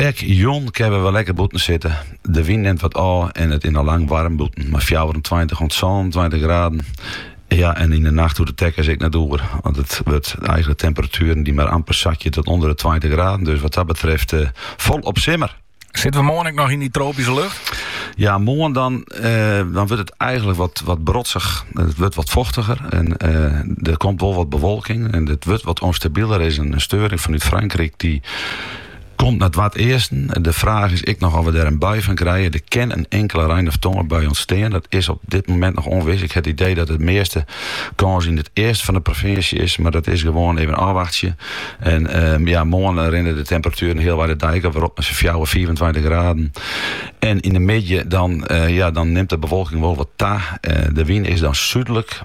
Ek jûn kinne we wer lekker bûten sitte. De wyn nimt wat ôf en it is noch lang waarm bûten, mei fjouwerentweintich oant sânentweintich graden. Ja, en yn de nacht hoege de tekkens ek net oer, want it wurde eigenlik temperatueren dy't mar amper sakje oant ûnder de tweintich graden. Dus wat dat betreft folop simmer. Sitte we moarn ek noch yn dy tropyske lucht? Ja, moarn dan, dan wurdt it eigenlik wat, wat brotsich. It wurdt wat fochtiger en der komt wol wat bewolking en it wurdt wat ûnstabieler. Der is in steuring fanút Frankryk dy't komt nei it easten. De fraach is ek noch oft we dêr in bui fan krije. Der kin in inkele rein- of tongerbui ûntstean. Dat is op dit momint noch ûnwis. Ik ha it idee dat de measte kâns yn it easten fan de provinsje is, mar dat is gewoan even ôfwachtsje. En ja, moarn rinne de temperatueren healwei de dei ek wer op nei sa'n fjouwer, fiifentweintich graden. En yn de middei dan ja, dan nimt de bewolking wol wat ta. De wyn is dan súdlik.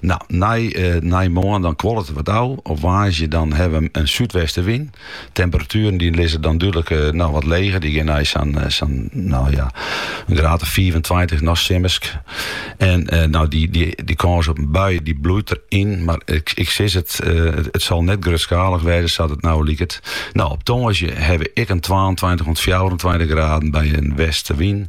Nou, nei, eh, nei moarn dan kuollet it wat ôf. Op woansdei dan hawwe we in súdwestenwyn. Temperatueren dy lizze dan dúdlik eh, noch wat leger. Dy geane nei sa'n, eh, sa'n, nou ja, in graad of 24, nog simmersk. En eh, nou, dy, dy, dy kâns op in bui dy bliuwt deryn. Mar ik, ik sis it, eh, it, it sil net grutskalich wêze, sa't it nou liket. Nou, op tongersdei hawwe we ek in 22 oant 24 graden by in westenwyn.